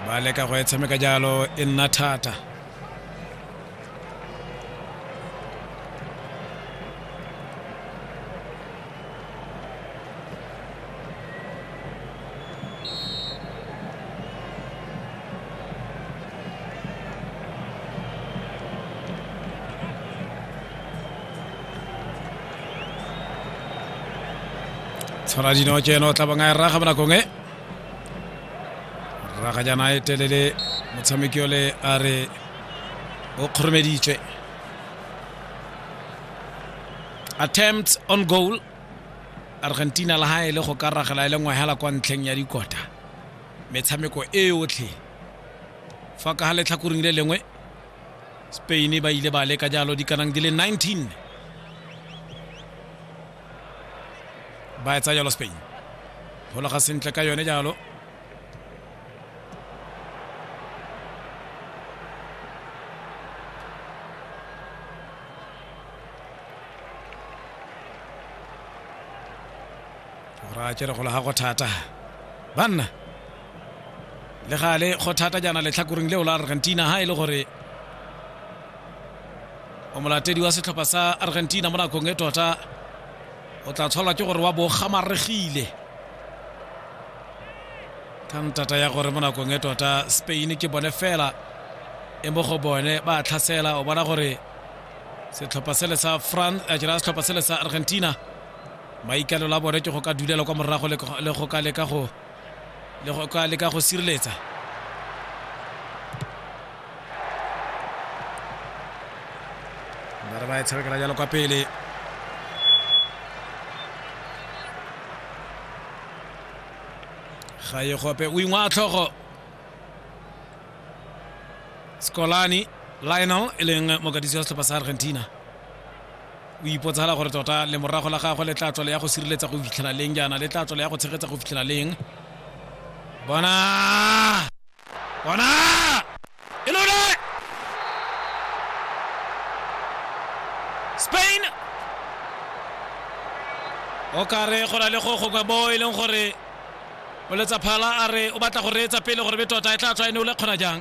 ba leka go e tshameka jalo e nna thata tshwana dino ke eno o tla bang a e raga bonakong e raga jaana e telele motshameki ole a re o kgoromeditswe attempt on goal argentina le ha e le go ka ragela e le ngwe hela kwa ntlheng ya dikota metshameko e yotlhe fa ka ga letlhakoring le lengwe spain ba ile ba leka jalo di kanang di le 19 ba etsa jalo spain golaga sentle ka yone jalo ra tsere go lega go thata banna le gale go thata jaana letlhakoreng leo la argentina ha e le gore o molatedi wa setlhopha sa argentina mo nakong e tota o tla tshwalwa ke gore wa bo gamaregile ka ntata ya gore mo nakong e tota spain ke bone fela e mo go bone ba tlhasela o bona gore setlhopha sele sa france a jera setlhopha sele sa argentina maikalelo a bone ke go ka dulela kwa morago le go ka leka go le go ka leka go sireletsa ba re ba e tshamekela jalo kwa pele ga ye gope o ingwa tlhogo scolani lionel e leng mokatisi wa setlhopha sa argentina O ipotsala gore tota lemorago la gagwe le tla tswela ya go sireletsa go fitlhela leng jaana le tla tswela ya go tshegetsa go fitlhela leng bona bona e lone spain o kare go na le go gongwe bo e leng gore o letsa phala a re o batla go reetsa pele gore be tota e tla tswa e ne o le kgona jang